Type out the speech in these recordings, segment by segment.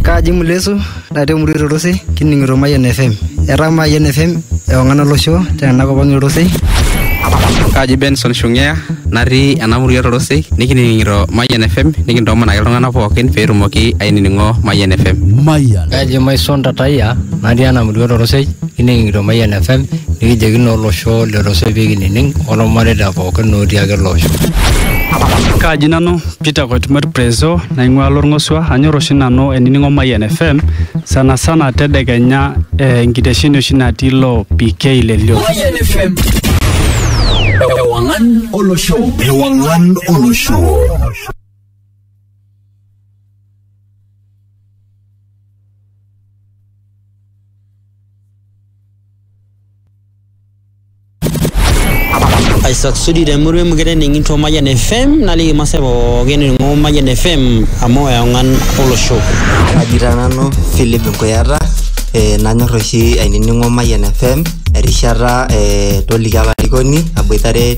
Kaaji Mulesu natii emurua Olorosei kining'ito Mayian FM. Etaa Mayian FM ewang'an olosho tena kop ang' Olorosei. Kaaji Benson Shung'ea natii ena murua Olorosei nikining'ito Mayian FM nikintoomon ake iltung'anak pookin pee etumoki ainining'o Mayian FM. Mayian. Kaaji Maison Tataya natii ena murua Olorosei kining'ito Mayian FM nikijoki naa olosho le Olorosei pee kinining' olmareita pookin otii ake ele osho. Kaaji nanu Peter Koitumert Prezo naing'ua Lorng'osua anyor oshi nanu eniningo Mayian FM sana sana tedekenya eh, enkitesheni oshi natii lo PK Lelio. Mayian FM. Ewangan olosho. Ewangan olosho. aisasudi temurua emukete ning'into Mayian FM naliki masaa pookin ning'o Mayian FM amu eong'an olosho. Kaji taa nanu Philip Nkuyata eh, nanyor oshi ainining'o Mayian FM erishata eh, toliki apa olarikoni aboitare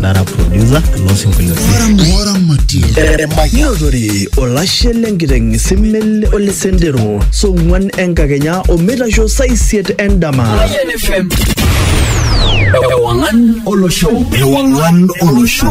nara producer loo sinkoliotin Ng'ora matie. Notore olashe lenkiteng simel ole sendero song'uan enkakenya omeitasho saa isiet endama. Ewangan Olosho. Ewangan Olosho.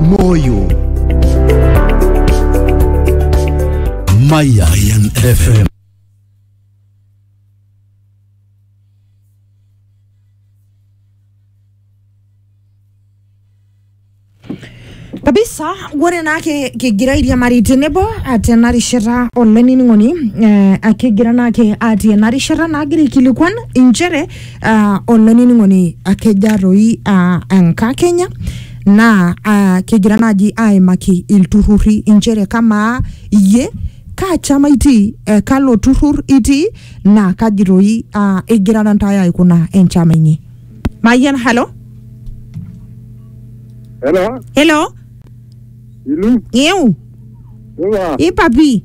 Moyo Mayan FM. kabisa ore naa ke- kigira airiamari tenebo ah, tena rishata olainining'oni eh, ah, kigira naa ke atii ena rishata naagira aikilikuan inchere ah, olainining'oni akeja toi ah, enkakenya naa uh, kigira naaji aimaki ilturrurri inchere kamaa iyie kaa chama itii eh, kalo turrur itii naa kaji toi uh, igirara ntae aikuna enchama inyi mayian halo Hello, helo ilu, iu iwa, ipapi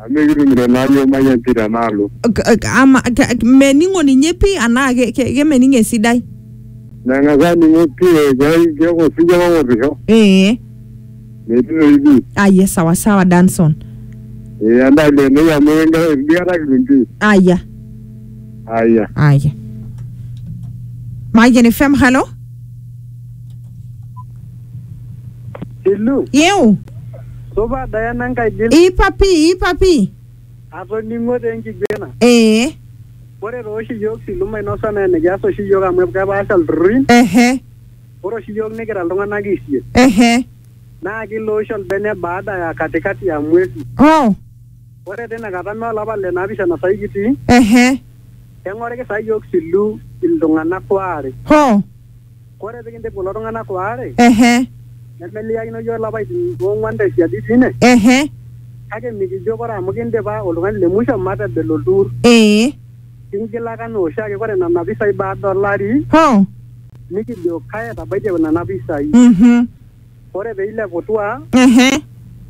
Amu ekitumito naa yiok mayian pii tenaalo. K- k- ama ke- ke- mening'o ninye pii anaa ke- ke- kemening esidai Meng'as aaning'o pii keai keeku osiwuo ake owotisho. ee Metii toki pii. aya sawasawa danson Ee endaa ileenoi amu enkera enkata kitum pii. aya Aya. aya mayian fm halo Hello. yeu Supa Diana Nkaidil. Ipa pii, ipa pii. Atoning'o taa enkiguena. Ee. Ore taa oshi iyiook silu mainosa naa enikias oshi iyiook amu kepaasha ilturrurri. Ehe. Ore oshi iyiook nikira iltung'anak isiet. Ehe. Naa kilo oshi olbene baada ya katikati ya mwezi. Oh. Ore tina kata mee olapa le naapishana saai kitii. Ehe. Keng'oriki saa iyiook silu iltung'anak waare. Hoo. Kore pikindip kulo tung'anak waare, Ehe, nemeliakino yook lapaitin oong'wan te siadi teine, ehe, kake mikijo kore amu kindipa oltung'ani le musho matebelo ltuur. ee, Kingilaka anaa oshiake kore nena pisai baada olari, hoo, nikijo kae etabaitie nena pisai. mhm, Ore pee ileputua, Ehe.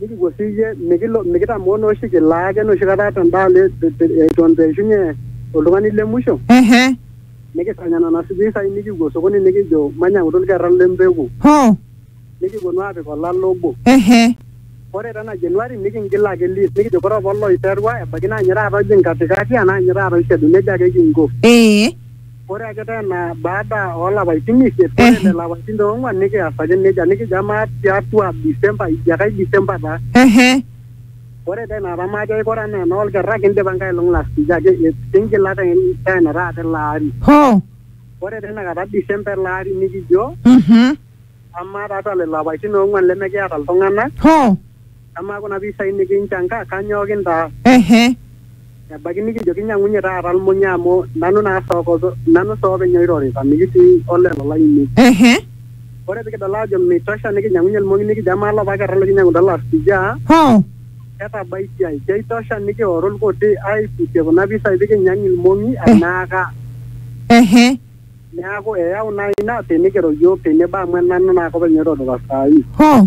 nikipuo sii iyie mikilo mikitamoo naa oshi kilaa ake enoshi kata tendaalo e- te- te- eton itu eishunye oltung'ani le musho Ehe. nikisanya nena pisai nikipuo sokoni nikijo manyang'utu ilkerra le mpeku Hoo. nikiponu aapik olale obo. Ehe. Ore tena Januari nikingil ake list nikijo kore apa oloiterua ebaiki naa ninye taata ojing katikati anaa ninye taata oishedu, neija ake kinko. Ee. Ore ake tena baada oo lapaitin isiet, ore Ehe. lelo apaitin te ong'uan nikias ake nejia, nikijo amaa tiatua December, ijo ake ai December taa. Ehe. Ore taa ina kata majo aikura anaa enoo lkerra kindipa enkailong last ijo ake kingila te tena taata ele ari. Hoo. Ore teina kata December ele ari nikijo Mhm. amaa tiatua lelo apaitin oong'uan lemekiata iltung'anak, Hoo. Amaa kuna pisai nikinchanga kanyoo kintaas? Ehe. Ebaiki nikijo kinyang'unye taata lmunya amu nanu naa nanu sii openy oirorita mikitii olelo lainei. Ehe. Ore pikidol aajo meitosha nikinyang'unye lmong'i nikijo amaa lopa kerra likinyang'utua last year Hoo. ketabaitiai. Keitosha nikioru lkuti aaiputie kuna pisai pikinyang ilmong'i anaaka. Ehe. Neaku eyau naa ina pee nikiro iyiook tenebo amu enanu naake openy oirorita saa hii. Hoo.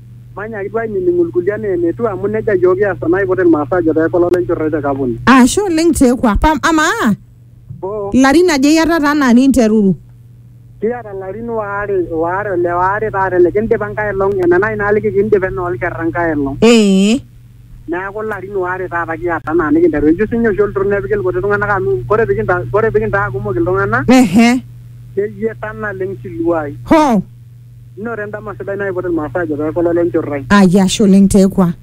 Manyaaki duo ainining'u ilkulie anaa enetiu amu neja iyiook kias tenaiput Ilmaasai ajo tee kolo lenchot oye te kapuni. Ashe oleng te kwa. Pam, amaa Oo, larin aja iyatata anaa ninteruru? kiata larin waare waare ole waare taata ele kindipa enkae elong ena nai naaliki kindipa enoo lkerra enkae elong. Ee. Neaku larin waare taata kiata anaa nikinteru. Eyieu sii ninye oshi olturrur nepiki ilkuti tung'anak amu kore pikinta kore pikintaa kumok iltung'anak Ehe. neyieta naleng siluai. Hoo. Inoto endama sidai naipot ilmaasai ajo pee ekololo enchorrai. Aye ashe oleng Tekwa.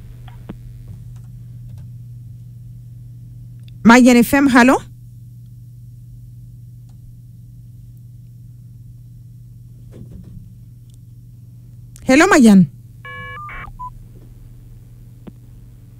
Mayian FM, halo. Hello Mayian.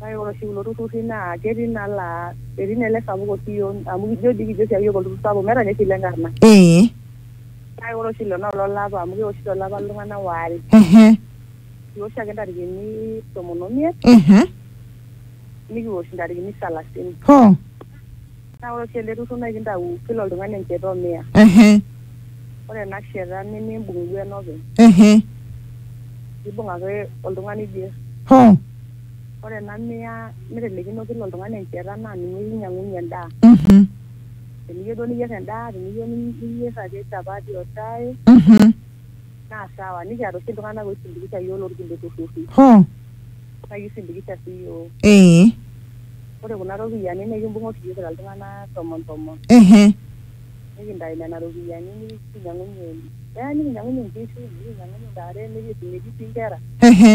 Kake ore oshi kulo turrurri naa ketii naa laa etii naa ele sapuk oshi iyiok amu ijo dii kijo oshiake iyiok olturrur sapuk meeta ninye oshi ile nkarna. Ee. Kake ore oshi ilo naa ololapa amu kewoshi tolapa iltung'anak waare. Ehe. Kiwosh ake intarikini tomon omiet. Ehe. Nikiwosh intarikini salasini. Hoo. Naa ore oshi ele turrur naa kintau kila oltung'ani encheta o mia. Ehe. Ore ena sheta nimimbung' duo enopeny. Ehe. Imbung' ake oltung'ani oiger. Hoo. Ore ena mia nitelekino kila oltung'ani encheta naa ninye kinyang'unye endaa. Mhm. Teniyieu duo niyier endaa, teniyieu niyier ake chapati o shai. Mhm. Naa sawa, nikiata oshi iltung'ana oisindikisha iyiook loo lkulie turrurri. Hoo. Naa kisindikisha sii iyiook. Ee. Ore kuna ropiyiani naa ekimbung'a oshi iyiook kira iltung'ana tomon tomon. Ehe. Nikintayu nena ropiyiani nikinyiang'unyie, eya nikinyiang'unyie nkishu, nikinyiang'unyie ntare, nikiisumie dii sii nkera. Ehe.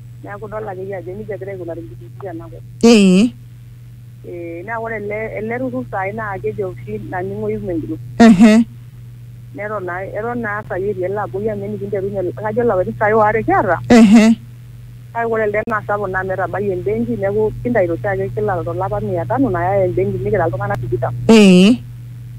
Neeku idol akeyie ajo nejia egira aikunari nkishu tena kop. Ee. Ee naa ore ele ele turrur saai naa kejo oshi naning'oyu women group. Ehe. Neton naa eton naa saai etii ele abori amu enikinterunye kajo ilapaitin saai waare kiata. Ehe. Kake ore elde naa sapuk naa amu etabayie embenki neeku kintaito oshiake kila to lapa mia tano nayai embenki nikira iltung'anak tikitam. Ee.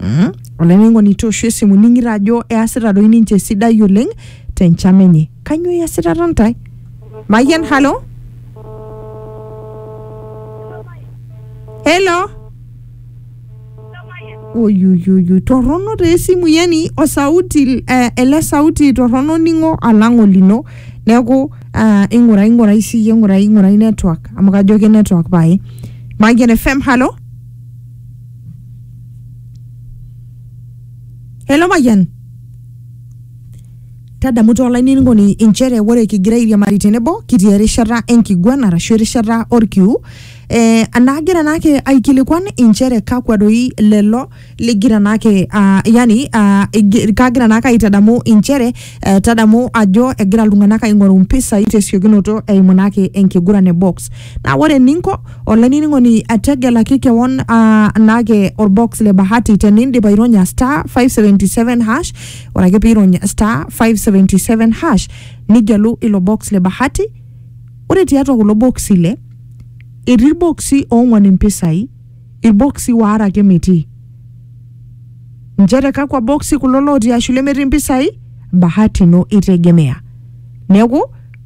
Mm. olainining'oni tooshu esimu ning'ito ajo easita doi ninche esidai oleng tenchama enye kanyoo iasitata ntae mayian halo helo oyuyuyu torrono taa esimu yani osauti eh, ele sauti torrono ning'o alang olino neeku ah, ing'urai ing'urai siyie ing'urai ing'urai network amu kajo ke network pae mayian fm halo Hello Mayian. Tadamu tolainining'oni inchere ore kigira airiamari tenebo kitii erishata enkiguan arashu erishata orkiu eh, naagira naake aikilikuan inchere kakwa doi lelo ligira naake ah, yani ah, igi- kagira naake aitadamu inchere eh, tadamu ajo egira iltung'anak aing'oru mpisai tesiokinoto eimu naake enkiguran e box Naa ore eninko olainining'oni tegelaki kewon ah, naake orbox le bahati tenindip aironya star 577 hash ore ake piirony star 577 hash nigelu ilo box le bahati ore tiatua kulo boksi ile etii irboksi oong'wan impisai Ilboksi waare ake metii. Nchere kakwa boksi kulo looti ashu lemetii mpisai? Bahati ino itegemea. Neeku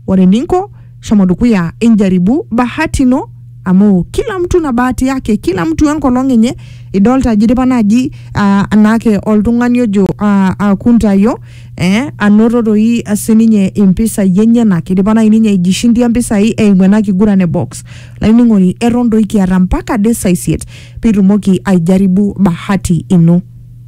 ore eninko shomo dukuya injaribu bahati ino amu kila mtu na bahati yake, kila mtu enkolong enye. Idolta ajo idipa naaji ah, anaake oltung'ani ojo ah, ah, Kuntayo eh, anoto doi sininye impisai enyenak. Idipa nai ninye aijishindia mpisai eimu ena kiguran e box. Lainining'oni eton doi kiata mpaka ade saa isiet pitumoki aijaribu bahati ino.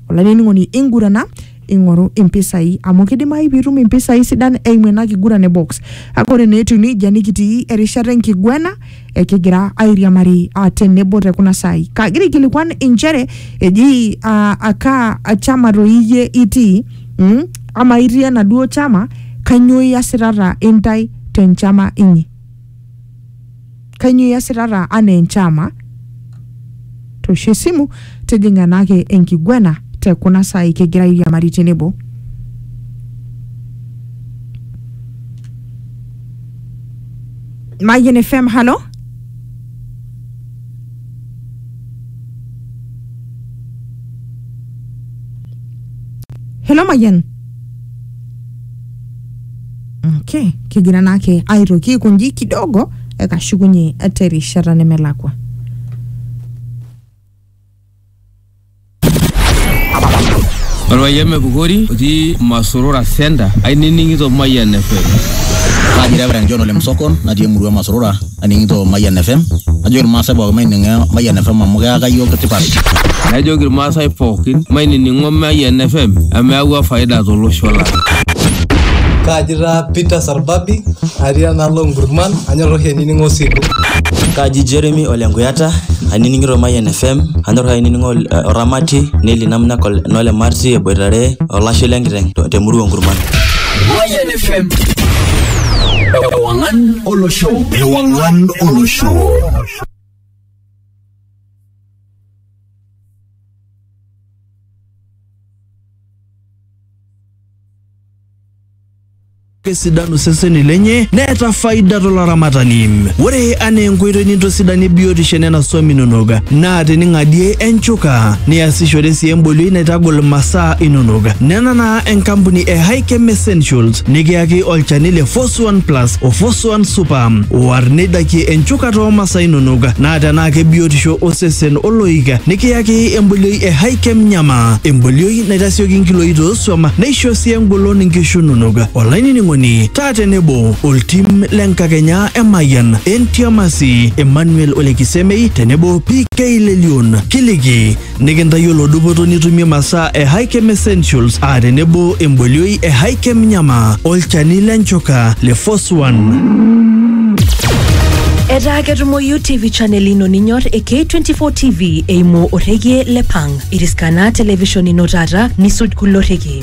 Olainining'oni ingurana ing'oru impisai amu kidimayu piitum impisai sidan eimu ena kiguran e box. Kake ore naa etiu neijia nikitii erishata enkiguena ekigira airiamari ah, tenebo te kuna saai. Kagira aikilikuan inchere eji ah, akaa chama toi iyie itii mm? Amaa itii enaduo chama, kanyoo iasitata intae tenchama inyi? Kainyoo iasitata anaa enchama? Toosho esimu, tijing'a ena ake enkiguana te kuna saai kigira airiamari tenebo. Mayian FM, halo? Hello Mayian. okay kigira naake aitoki aikonji kidogo ekashukunye terishata nemelakwa Orpayian Mepukori otii Masurura Center ainining'ito Mayian FM. Kaji Reverend John Ole Msokon natii emurua Masurura aning'ito Mayian FM najoki irmaasai pookin maining'o Mayian FM amu keyaka iyiook tipat. Najoki irmaasai pookin mainining'o Mayian FM amu eyawua faida tolosho lang. Kaaji taa Peter Sarbabi atii enaalo Nkurman anyor oshi ainining'o Osigo. Kaaji Jeremy Ole Nkuyata ainining'ito Mayian FM anyor ainining'o uh, Oramati Neli Namna Kol- Nole Marti eboitare olashe lenkiteng' te- temurua Nkurman. Mayian FM. Ewangan olosho ewang'an olosho kesidanu seseni lenye neeta faida tolaramatani ore anaa enkoitoi nintosidanie biotisho enena swam inonok naa tening'adie enchuka niasishore sii embolioi naitagol masaa inonok nena naa enkampuni e Hikem Essentials nikiyaki olchani le Fos Suan Plus o Fosuan Super. War neidakie enchukata oo masaa inonok naa tenaa kebiotisho osesen oloik nikiyaki embolioi e Hikem Nyama. Embolioi naitasioki nkiloi toosuam neisho sii engolon nkishu inonok. Olainining'oni taa tenebo oltim le nkakenya e Mayian, Entiamasi, Emmanuel Olekisemei tenebo PK Lelion. Kiliki Nikintayiolo dupoto nitumie masaa e Hikem Essentials aa tenebo embolioi e Hikem Nyama, olchani le nchuka le Foswan. Etaa ketumoyu TV channel ino ninyor e K24 TV eimu orrekie le Pang. Iriskana television ino taata nisuj kulo rrekie.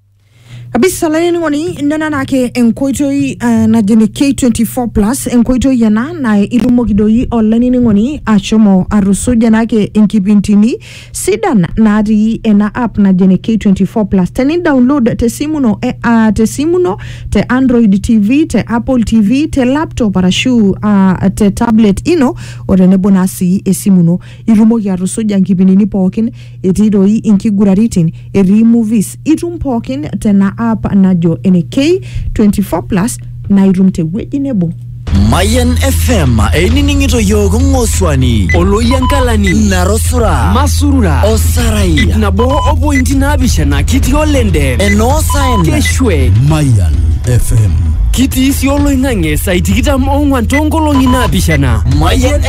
kabisa laini ng'oni nena naake enkoitoi uh, najene K24 plus enkoitoi ena na itumoki doi olainining'oni ashomo atusuja naake inkipintini sidan natii ena app najene K24 plus teni download tesimu ino eh, uh, tesimu ino te Android TV te Apple TV te laptop arashu uh, te tablet ino o tenebo naa sii esimu ino itumoki atusuja nkipindini pookin etii doi inkiguraritin etii movies itum pookin tena app najo ene k24 plus naa itum tewueji nebo Mayan FM einining'ito yiook ng'osuani oloyiankalani narosura masurura osarai nabo o pointi naapishana kitii olende enoosaen keshwe Mayan FM. kitii sii oloing'ang'e saai tikitam oong'wan toonkolong'i naapishana Mayan